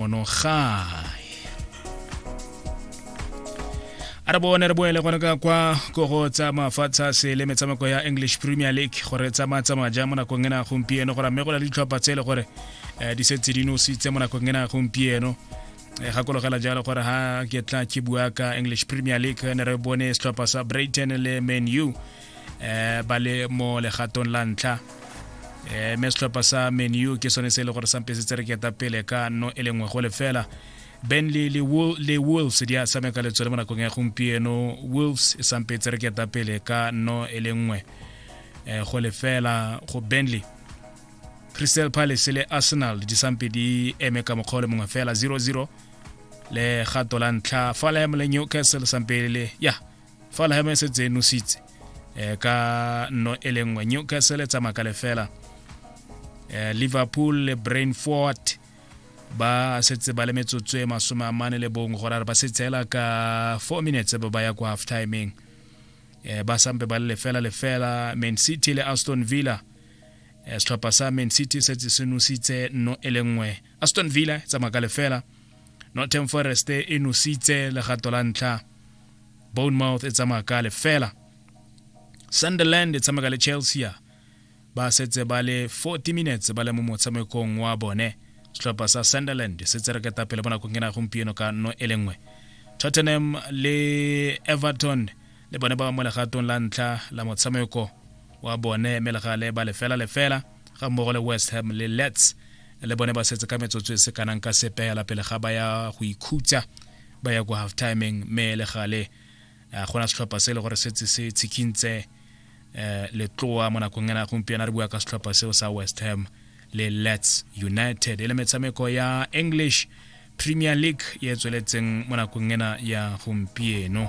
ono gae a re bone re boele gone ka kwa ko go tsa mafatshe a sele metshameko ya english premier league gore e tsamaya tsamaya jang mo nakong ena ya gompieno gore mme go na le ditlhopha tse e le gore um di setse di nositse mo nakong ena ya gompieno eh, gakologela jalo gore ha ke tla ke bua ka english premier league ne re bone setlhopha sa brighton le man u eh ba le mo legatong la ntlha eh me setlhopha sa menu ke sone se e le gore sampe se tsereketa pele ka no e lengwe go lefela benley le, Wol le wolves di a tshameka le tsone mo nakong ya gompieno wolves e sampe e tsereketa pele ka no e lengwe eh go lefela go benley crystal palace le arsenal di sampe di eme ka mokgwa o le mongwe fela 00 le gato la ntlha falem le newcastle sampe le ya yeah. fa lehema e setse e nositse um ka nno e le nngwe newcastle e tsamaya ka lefela um liverpool le brain fort ba setse ba le metsotso e masome a mane le bongwe gore re ba setshela ka four minutes ba ba ya kwa half timeng eh, ba sampe ba le lefela lefela man city le aston villa eh, setlhopha sa man city setse se nositse no e le nngwe aston villa e tsamaya ka lefela northern forest e nositse legato la ntlha bournemouth e tsamaya ka lefela sunderland e tshameka le chelsea ba setse ba le 40 minutes ba le mo motshamekong wa bone setlhopha sa sunderland se tse reketa pele mo nakong ena gompieno ka no e le nngwe tottenham le everton le bone ba mo legatong la ntlha la motshameko wa bone mme le gale ba lefela lefela ga mmogo le west ham le lets le bone ba setse ka metsotso e se kanang ka sepela pele ga ba ya go ikhutsa ba ya kwa half timing mme le gale eh, go na setlhopha se e le gore setse se tshikintse um letloa mo nakong ena gompieno re bua ka setlhopha seo sa west ham le lets united e le metshameko ya english premier league e tsweletseng mo nakong ena ya gompieno